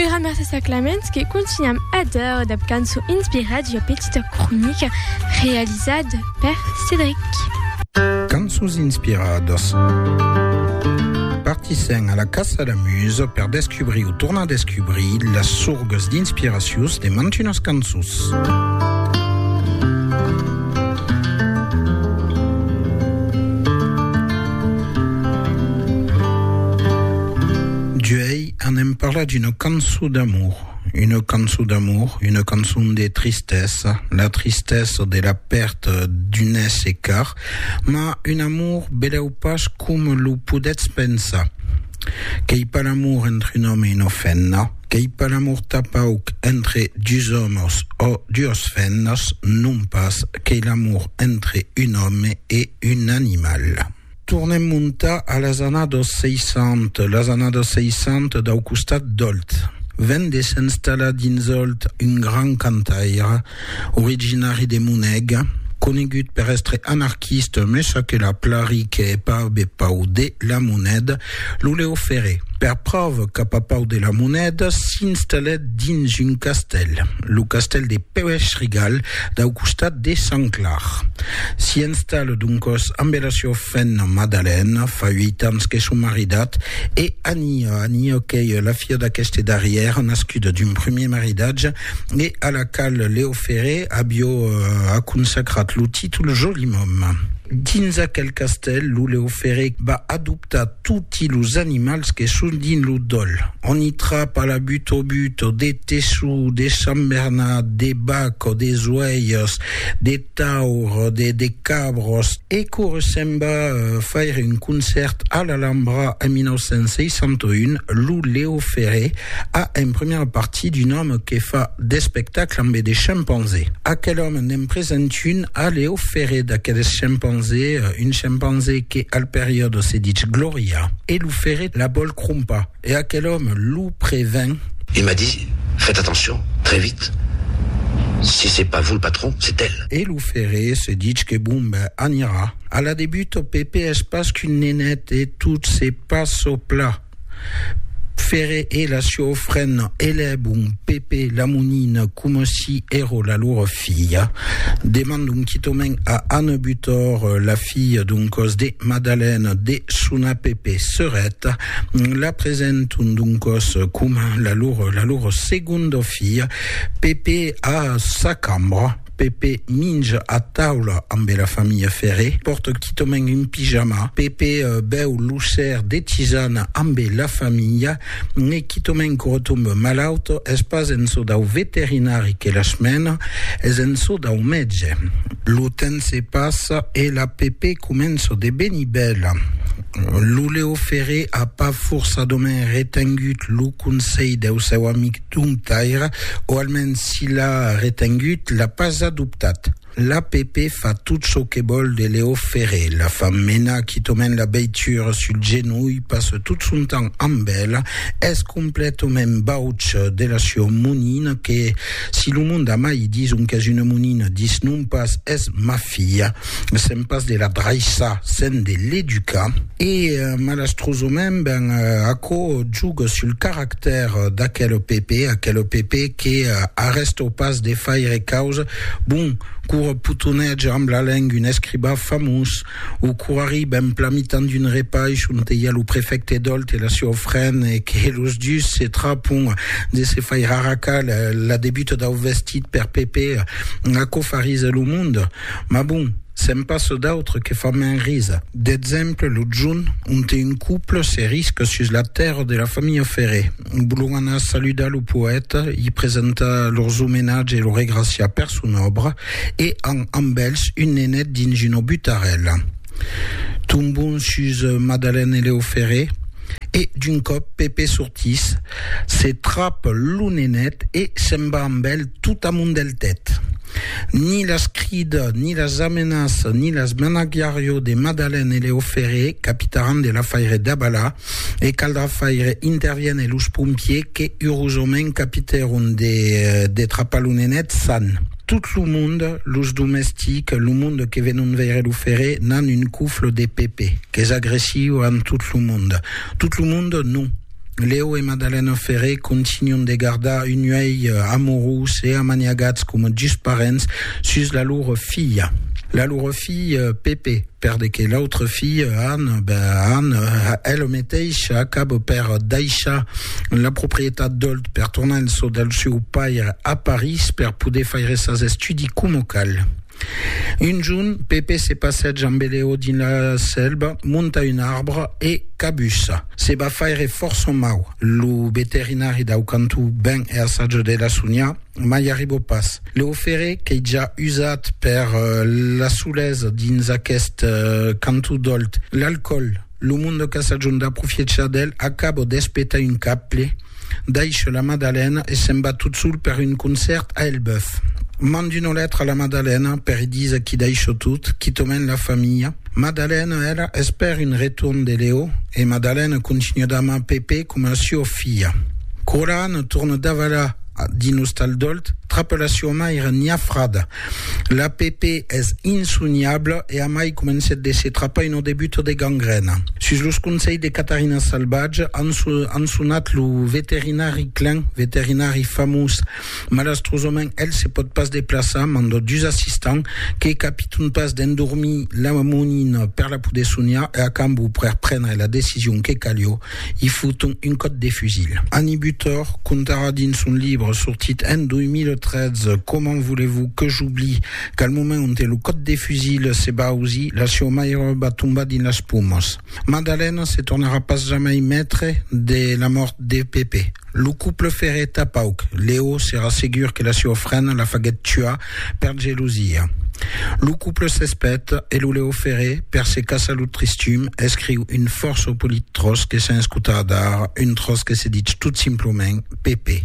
Ura mercés a Clamens que continuam adeur dab canço inspirat ua petita cronica realizad per Cédric. Cançons inspiradas. Partissèm a la Caça la Muse per descubrir o tornar descubrir las sorgas d'inspiracions de mantunas cançons. D'uèi anem parlar d'una cançon d'amor, una cançon d'amor, una cançon de tristesa, la tristesa de la pèrta d'un èsser car, ma un amor belèu pas coma lo podètz pensar. Qu'ei pas l'amor entre un òme e una femna, Qu'ei pas l'amor tà pauc entre dus òmos ò duos femnas, non pas, qu'ei l'amor entre un òme e un animal. Tornem montar a las annados 60, las annados 60 dau costat d'Òlt. Ven de s'enstallar dins Òlt un grand cantaire, originari de Monèga, conegut per èstre anarquista mes çò que la plari que hè pas be pau de la monèda, lo Leo Ferré, per pròva qu'a pas pau de la monèda, s'installèt dins un castèl, lo castèl de Pèuèch-Rigal, dau costat de Sant Clar. S'i installa doncòs ambe la siua femna Madalèna, fa uit ans que son maridat, e Ania, Ania qu'ei la filha d'aqueste darrièr, nascuda d'un premier maridatge, e a la qual Leo Ferré avió a consacrat lo títol Joli Mòm. Dins aquel castèl, lo Leo Ferré va adoptar toti los animals que son dins lo dòl. On i trapa la butobuto, de tessó, de sambernat, de bac o de zoèirs, de. taur, de de cabros. E quora se'n va faire un concèrt a l'Alhambra en 1961, lo Leo Ferré a en primièra partie d'un òme que fa d'espectacle ambe de chimpanzé. Aquel òme n'en present un a Leo Ferré d'aqueles chimpanzé, un chimpanzé que al periòde se ditz Gloria e lo Ferré la vòl crompar. E aquel òme lo prevèn. E m'a dit, Fètz atencion, très vite, si c'est pas vous le patron, c'est elle. E lo ferré se ditz que bon ben anirà. A la debut ò Pèpe es pas qu'un nenet e tot se passe au plat. Ferré e la siò frena elèbon Pèpe la monina coma si èró la lor filha. Demandon quitòment a Anne Butor, la filha d'un còs de Madalène, de sonar Pèpe serèt. La presenton doncòs coma la lor, la lor segonda filha. Pepe a sa cambra. Pepe minja a taula ambe la familha Ferré. Pòrta quitament un pijama. Pepe bèu lo ser de tisana ambe la familha. E quitament que retombe malaut. Es pas en çò dau veterinari que las mena, es en çò dau mètge. Lo temps se passa e la Pepe comença de venir bèla. Lo Leo Ferré a pas forçadament retengut lo conselh deu seu amic Domptaire, o almens si l'a retengut, l'a pas adoptat. L'APP fa tot çò que vòl de Leo Ferré, la fa menar quitament la veitura sul genolh, passa tot son temps amb ela, es completament bauç de la sua monina que, si lo monde a mai dison qu'es una monina, disnon pas, es mafiosa. filha, sens pas de la draissar, sens de l'educar. E malastrosament, ben, aquò juga sul caractèr d'aquel Pepe, aquel Pepe que arrestó pas de faire causa, bon, qu'ora potonètge amb la lenga un escribà famós, o qu'ora arribe en plan mitan d'un repaish onte i a lo prefècte Dolt e la siua frena e que los dus se trapon de se faire arracar la debuta dau vestit per Pepe, Aquò fa risa lo mond, mas bon, se'n passa d'autres que fan mens risa. D'exemple, lo junh, onte un couple se risca sus la tèrra de la familha Ferré. Vòlon anar saludar lo poèta, i presentar lors omenatge e lo regraciar per son òbra, e an amb elhs un nenet dins una butarèla. Tombon sus Madalène e Leo Ferré. e d'un còp Pepe sortís, se trap lo nenet e se'n va amb el tot amondeltet. Ni las crida, ni las amenaça, ni las managiarió de Madalen e Leo Ferré, capitaràn de l'afaire Dabala, e caldrà faire interviene los pompiers que urosament capitèron de trapar lo nenet san. Tot lo monde, los domestics, lo monde que venon veire lo ferre, n'an un cofle de Pepe, qu'es agressiu amb tot lo monde. Tot lo monde, non. Leo e Madalena Ferre continuen de gardar un uèlh amorós e amaniagats coma dus parents sus la lor filha. La lor filha, Pepe. Per de que l'autre fille, Anne, ben Anne, elle meteisha acabo per daishar la proprietat d'Olt per tornar en so del seu paire a Paris per poder faire sas estudi como cal. Un junt, Pepe se passeja amb Eleo dins la selva, monta un arbre e cabussa. Se va faire fòrça mau. Lo veterinari dau cantó ben e assaja de la sonhar. Mai n'arribo pas. Leofere qu'ei ja usat per la solesa dins aqueste canto dolt. L'alcòl, lo monde qu'a sajon d'aprofiechar d'el, acabo d'espetar un caple, daisho la madalena e se'n va tot sol per un concèrt a Elbeuf. Mand una letra a la madalena per i díser qu'i daisho tot, quitament la familha. Madalena, ela, espèr un retorn de Leo e madalena continua d'amar Pepe coma a sua filha. Quora Anna torna davalar dins Ostal Dolt, trapa la sua maire Nia Frada. La Pepe es insoniabla e amai comencèt de se trapar una debuta de gangrèna. Sus los conselhs de Catarina Salvatge, an sonat lo veterinari Klein, veterinari famós. Malastrosament, el se pòt pas deplaçar, manda dus assistants, que capiton pas d'endormir la monina per la poder soniar e a cambó per prendre la decision que calió, i foton un còp de fusil. Annie Butor contarà dins son libre sortit en 2013 Comment voulez-vous que j'oublie qu'al moment onte lo còp de fusil se va ausir, la sieu mairòba va tombar dins las pomas. Madalena se tornarà pas jamai maitre de la mòrt de Pepe. Lo couple ferrèt a pauc, Leo s'èra segur que la siua frena la faguèt tuar per gelosia. Lo couple s'espèt e lo Leo Ferré, per se caçar lo tristum, escriu un fòrça polit tròç que sens cotar dar, un tròç que se ditz tot simplament Pepe.